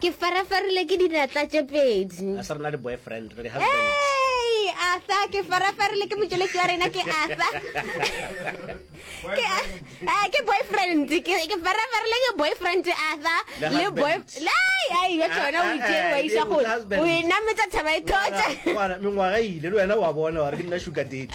ke farafarile ke dinatla tše pedi a sa rena le boyfriend re husband asa ke farafarile ke motšweletši wa rena ke asa ke eh, ke boyfriend ke ke farafarile ke boyfriend asa le boy lai ai yo tsona o itse wa isa go o ena metsa thaba e thotshe mengwaga ile le wena wa bona wa re ke nna sugar date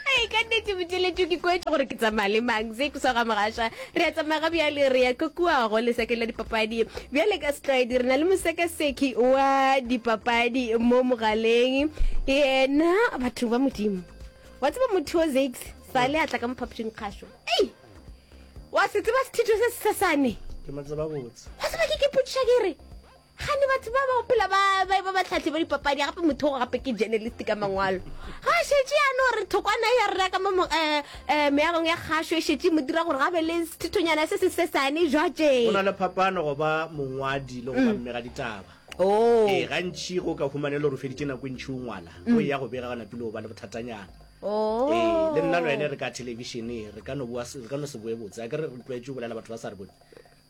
ee ka nnete boteletso ke kwetse gore ke tsamaya le mang se kusa ga mogaša re a tsamaya ga bjale re ya kokuago lesekeng la dipapadi bjale ka setlwaedi re na le mosekaseki wa dipapadi mo mogaleng yena batho ba modimo wa tseba motho o zax sa le a tla ka mophapošeng kgašo ei wa se tseba sethitho se sesesane wa tseba ke ke potšiša ke re Kgane batho ba ba opela ba ba ba batlhatlhi ba dipapadi gape motho go gape ke journalist ka mangwalo ga a šetše ya no re thokwana ya rera ka mo um meagong ya kgašo e šetše mo dira gore ga be le sethethonyana se se sesane jwatšeng go na le phapano go ba mongwadi le go ba mmega ditaba Oh. ee gantši go ka humane le gore o feditše nako e ntšhi o ngwala o ya go bega ga napile o ba le bothatanyana Oh. ee le nna le wene re ka thelebišene re ka no boa se- re ka no se boe botse a ke re re tlwaetše go bolela batho ba sa re bone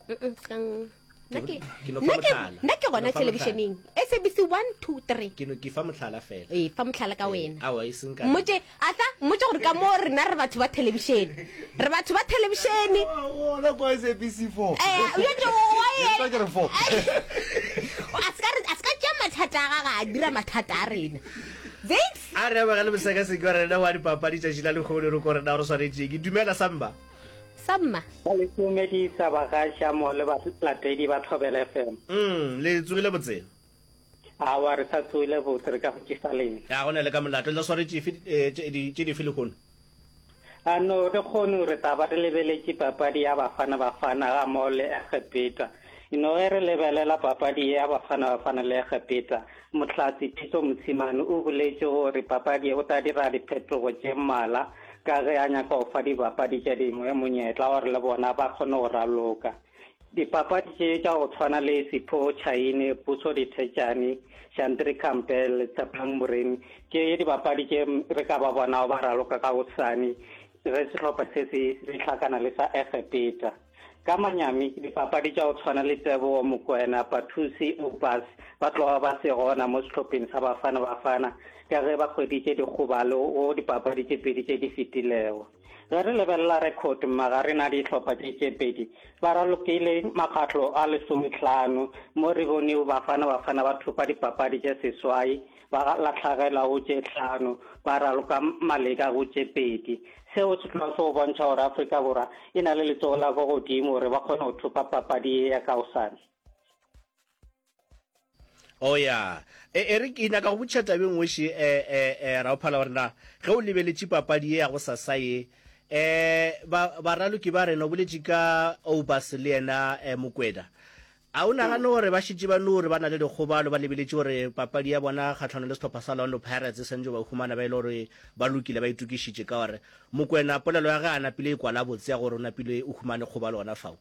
Mm-mm, sang. nna ke Ke no fa nna ke- mohlala. nna ke Ke no gona fa telebišeneng sabc 1 2 3 ke no ke fa mohlala fela ee fa motlhala ka Eh, wena aowa e seng ka mmotse ahla mmotse gore ka moo rena re batho ba telebišene re batho ba telebišene gona kwa sabc four Eh, yo tšo wa ye- Ke tla ke re four a se ka re- a se ka tšea mathata a gaga a dira mathata a rena Thanks. a re amagale mosekaseki wa rena wa dipapadi tšatši la lekgolo re ko rena gore swanetšeng ke dumela samba sa mma ba le tumedisa bagaša mo le balatedi ba thobele fm mm, le tsogile botse awa re sa tsogile botse re ka go tšisa leng ya go na le ka molato le sware tšife eh, tše dife lehono a no re kgone re taba re lebeletše papadi ya bafana bafana ga mo le egepeta ino ge re lebelela papadi ya bafana bafana le egepeta Mohlahli Pitso Mosimane o boletše gore papadi o tla dira diphetogo tše mmala ka ge a nyaka go fa dibapadi tše dingwe monyetla gore le bona ba kgone go raloka. Dipapadi tše tša go tshwana le Sipho Chaine, Puso Dithetšane, Shantri Campbell le Tshephang Moremi ke dibapadi tše re ka ba bonago ba raloka ka gosane ge sehlopha se se hlakana le sa Egepeta. Ka manyami, dipapadi tša go tshwana le Tebogo Mokoena, Pathusi Oupas ba tloga ba se gona mo sehlopheng sa Bafana Bafana ka ge ba hweditše dikgobalo go dipapadi tše pedi tše di fetilego. Ge re lebelela rekhodi magareng a dihlopha tše tše pedi, ba ralokile makgatlo a lesometlhano mo re bonego Bafana Bafana ba thopa dipapadi tše seswai ba lahlagela go tše tlhano, ba raloka maleka go tše pedi. Seo se tloga se go bontšha gore Afrika Borwa e na le letsogo la ko godimo gore ba kgone go thopa papadi ye ya kaosane. o ya e, e re ke nyaka go botšha tabeng weše e, e, e, raophala gore na ge o lebeletše papadi ye ya go sasa ye e ba baraloki ba rena o boletše ka obas le yena e, mokweda A o nagane gore ba šetše ba no gore ba na le dikgobalo ba lebeletše gore papadi ya bona kgahlano le sehlopha sa Orlando Pirates e swantšo ba humana ba e le gore ba lokile ba itokišitše ka gore Mokwena polelo ya ge a napile e kwala botse ya gore o napile o humane kgobalo gona fao?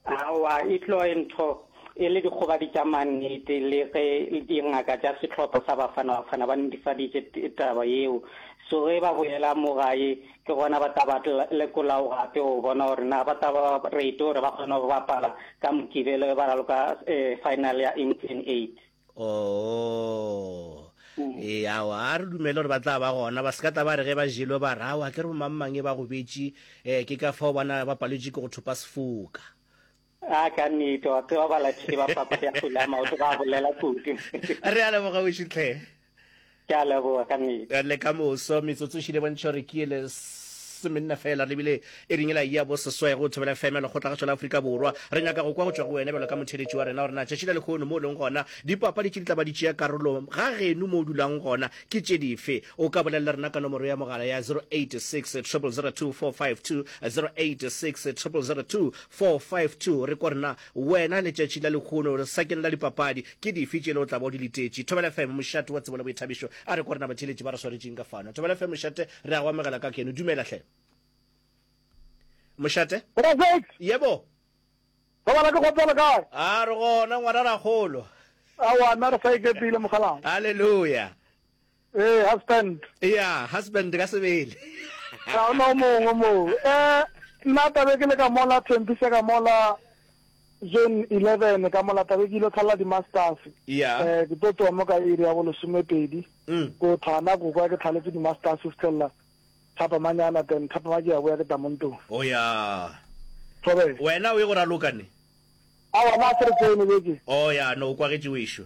Aowa, e tlo e ntho e le dikgobadi tša mannete le ge dingaka tša sehlopha sa Bafana Bafana ba netefaditše taba yeo. So ge ba boela mo gae Ke gona ba tla ba lekolago gape go bona gore na ba tla ba rate gore ba kgone go bapala ka Mokibelo e ba raloka eh, final ya England 8. Oh. Mm. e awa a re dumele gore ba tla ba gona ba sekata ba re ge ba jelo ba rawa ke re bomangmang e ba gobetše um ke ka fao bana ba palwetše ke go thopa sefoka A ka nnete wa tseba balatedi ba papadi ya kgwele ya maoto ba bolela kudu. Re a leboga wešo tlhe. Ke a leboga ka nnete. Le ka moso metsotso šile bontšha gore ke ele semenna fela re bile e ringe la ya bo seswai go thobela fm lekgotla gašo la Afrika Borwa. Re nyaka go kwa go tšwa go wena bjalo ka motheeletši wa rena gore na tšatši la lekhono mo o leng gona dipapadi tše di tla ba di tšea karolo ga geno mo o dulang gona ke tše dife. O ka bolelela rena ka nomoro ya mogala ya 0860024520 0860024520. 452 re ko rena wena letšatši la lehono re sakeng la dipapadi ke dife tšele o tla ba o di letetše thobela fm mošate wa tsebo le boithabišo a re ko rena batheeletši ba re swaretšeng ka fano thobela fm mošate re a go amogela ka keno dumela hle mošate yebo Robala ke kgotsa le kae? A re gona ngwana ra kgolo. Awa nna re sa ikepile mogalang. Hallelujah. Ee, husband. Eya, husband ka Sebele. Ga ona o mongwe moo. Eh, nna tabe ke le ka mola Thembisa ka mola zone 11 ka mola tabe ke ile tlhala di-masters. Eya. Eh, ke tlo tsoa mo ka iri ya bolesomepedi. Mm. Ko Thana ko kwa ke tlhaletse di-masters fitlhelela thapamanyana then thapama ke ya boya ke tla mo ntlong. Oya. Thobe. Wena o ye go raloka ne? Awa, nna a se re tsene beke. Oya, no o kwagetše wešo.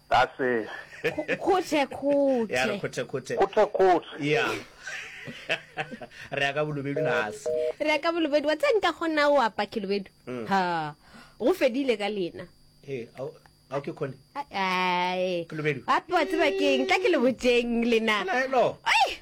Ka se. Khuthekhuthe. Khuthekhuthe. Khuthekhuthe. Ya. Re ya ka bolobedu na se. Re ya ka bolobedu wa tse nka gona o apa khilobedu. Mm. Ha. Go fedile ka lena. He, au au ke khone. Ai. Khilobedu. Apa tse bakeng tla ke le boteng lena. Hello. Ai.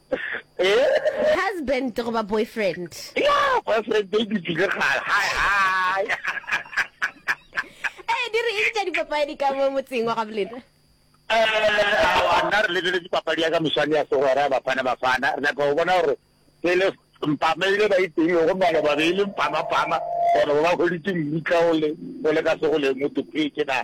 Husband goba boyfriend? Yaa, boyfriend e dutile kgale, hai, hai. Ee, di re eng tša dipapadi ka mo motseng wa gabo lena? Eh, awa, nna re lebeletše papadi ya ka moswane ya segwera ya Bafana Bafana. Re nyaka go bona gore pele mpama ile ba iteile gomme ba le babedi mpamapama gore ba hweditše mmutla o le, o le ka segoleng o topetše na.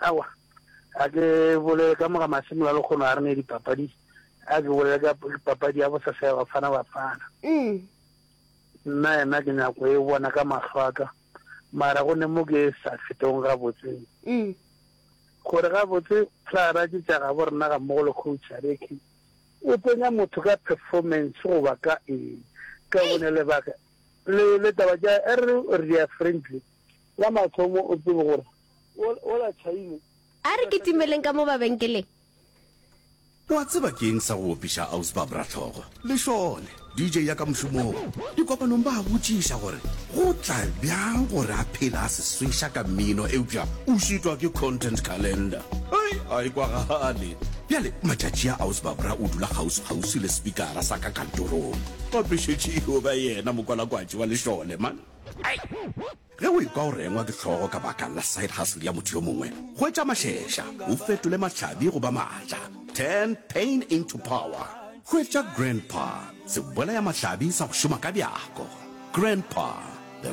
Aowa, a ke bolele ka moga masimo la lekgono a re ne dipapadi, a ke bolele ka papadi ya bosasa ya Bafana Bafana. Mm. Nna yena ke nyako e bona ka mahlo a ka, mara go ne mo ke sa fetong gabotse. Mm. Gore gabotse Clara ke tša gabo rena ga mmogo le coach a re ke o tsenya motho ka performance goba ka eng ka bone lebaka le le taba ja er re ya friendly la mathomo o tsebe gore A re kitimeleng ka mo babenkeleng. O a tseba ke eng sa go opiša Ausi Bob Ratlhogo? Lešole, DJ ya ka mošomong, dikopanong ba a botšiša gore go tla bjang gore a phele a se sweša ka mmino eupša o šitwa ke content calendar. Hei, a e kwagale. Bjale matšatši a Ausi Babra o dula kgauswi-kgauswi le sepikara sa ka kantorong. Ba phešetše e yo ba yena mokwalakwatši wa Lešole, man. Hei! Ge o ekwa o rengwa ke hlogo ka baka la side hustle ya motho yo mongwe, hwetša mašeša o fetole mahlabi go ba maatla, turn pain into power. Hwetša Grandpa, sebolaya-mahlabi sa go šoma ka bjako. Grandpa, the.